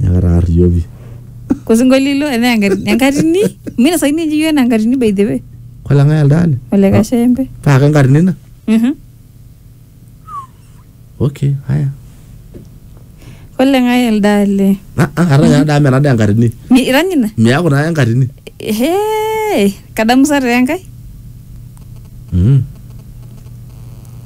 Nyakararioki. Kosinkolilo enaa enkatini- enkatini. Mina sai ninye iyieu enaa enkatini by the way. Kwala ng'ae elde ale? Ole Kashembe. Paa ke nkarna ina? Mhm. Okay, haya. Ole ng'ae elde ale. Ah, ah, kata nya daa mena daa enkatini. Mi- Irany ina? Miaku naa enkatini. Hee. Kadamu sa taa enkae? Mm.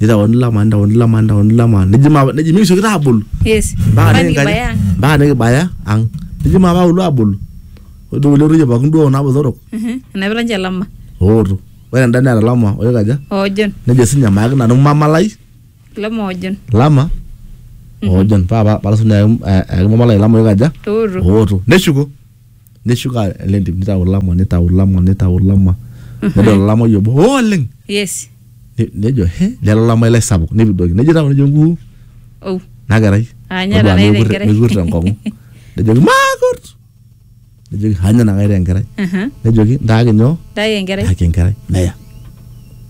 nitaoni lama nitaoni lama nitaoni lama neji ma neji mingisho kita abulu Yes. mpaka Kwani nikibaya nikibaya ang. mpaka nikibaya ang neji ma paulu abulu ore duo kulie ororei pookin duo kuna botorok Mhm. Enapita nche lama. ooto ore enda neeta lama oikaja Ojon. nejo sinye amayaki nanu mamalai Lama ojon. lama oojon paa pa- palasu nayaki eh, ayaki mamalai lama oikaja Oto. ooto neshuko neshuka ele ntim nitau olama nitau olama nitau olama nedol olamai obo "Oh, oleng yes Ne- nejo he lelo olamai lai sapuk nepidoki nejo tau nejo nguu oh nakerai Ah, nya Todua nanu mekut- enkerai. mekut enkong'u nejoki maakut nejoki anya nakaita enkerai aha nejoki ntaaki nyoo dai enkerai ntaaki enkerai neya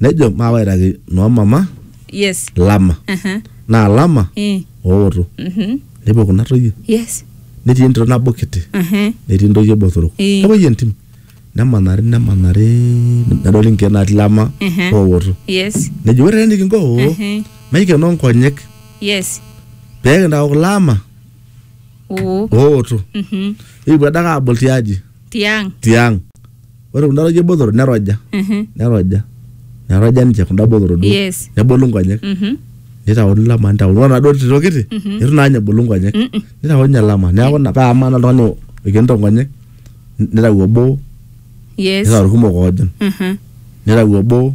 nejo maawaitaki noomama yes lama Aha. naa lama Eh. ooto Mhm. nepuo kuna toyie yes netii entito nabo kiti Aha. netii ntoyie botorok Eh. nepuoi entim nemanari nemanari nedoli nkeek natii lama Mhm. ooto yes nejo ore enikinko oo Mhm. maikenoo nkonyek yes pee kintau kulama oo ooto Mhm. nikipuo adake aabol tiaji tiang. tiang ore kunda toyie botorok neroja Mhm. neroja neroja ninche kunda botorok duo Yes. nebolu nkonyek Mhm. nitauni lama nitauni ore naduo tito kiti itu naa ninye ebolu nkonyek Mm-mm. nitauni ninye lama neeku ina paa amaa naa oltung'ani oikenito nkonyek nitau obo Yes. nitau irkumok oojing Mhm. nitau obo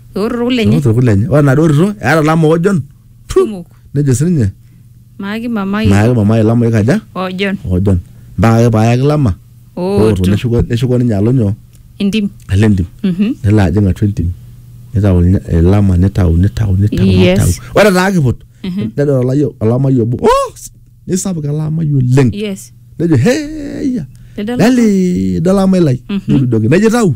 Eorroro kule enye. Eoto kule enye. Ore enaduo tito eeta ilamook ojon. Tu! Kumok. Nejo sininye Maaki mamai. maayaki mama ai ilamook aja Ojon. ojon. Mpaka ake paayaki lama ooto Ooto. neshuko neshuko ninye alo nyoo Entim. alo entim. Mhm. nelo ajing atua entim nitau ilnya- ilama nitau nitau nitau Yes. nitau ore taa kiput nedol olayiok olamai obo oh nisapuk ele amai oleng Yes. nejo heya Nedol- lele idol amai lai Mhm. nirudoki nejo itau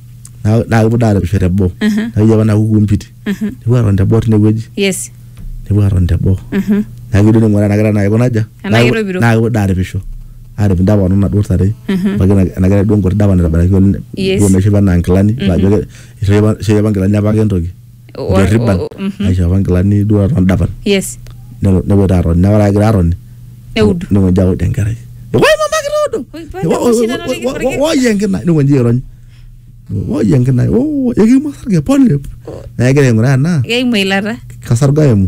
Na- naa kepuo daa aremisho teboo nakeji apa naku kumpiti nepuo aton teboo tinewueji yes nepuo aton teboo Mhm. naa kijo ning'uraa ena kerai naa kiko naja Enaa Naa kepuo- kitopiro. naa kepuo daa aripisho arip indapa ono naduo tare ebaiki na- ena kerai duo nkuti dapa naitabaraki oleng Yes. duo naishopo enaa nkilani ajo ke- ishopito apa- ishopito apa nkilani apake entoki O- derriban o- mhm. aisho apa nkilani duo aton dapan yes nelo nepoito atoni naa ore agira atoni neudu nikonji aud enkerai woi mama kitoodo Oi, pole, Wo- wo- oshindano wo- nikikoriki. wo- woi enkina nikonji airony woi enkina "Oh, ekimwa sarge pole naa egira aing'uraa ena keimu eilata kasarge aimu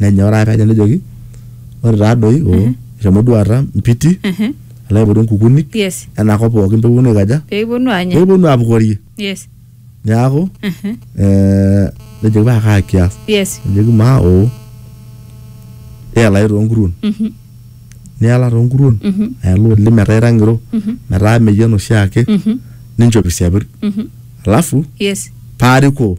nenyoraa kaja nejoki ore taa doi oo mhm. eshomo duo aata mpiti mhm. alo aipotu nkukunik yes. enakop pookin peponu aikaja peponu anya peponu apukorie yes. neaku mhm. eh, nejoki paa kaa kias yes. nejoki maa oo eelae toonkuruon niala toonkuruon aela oleng metaa ira ng'iro metaa meyian oshiake ninchop isiapir alafu yes. paarikoo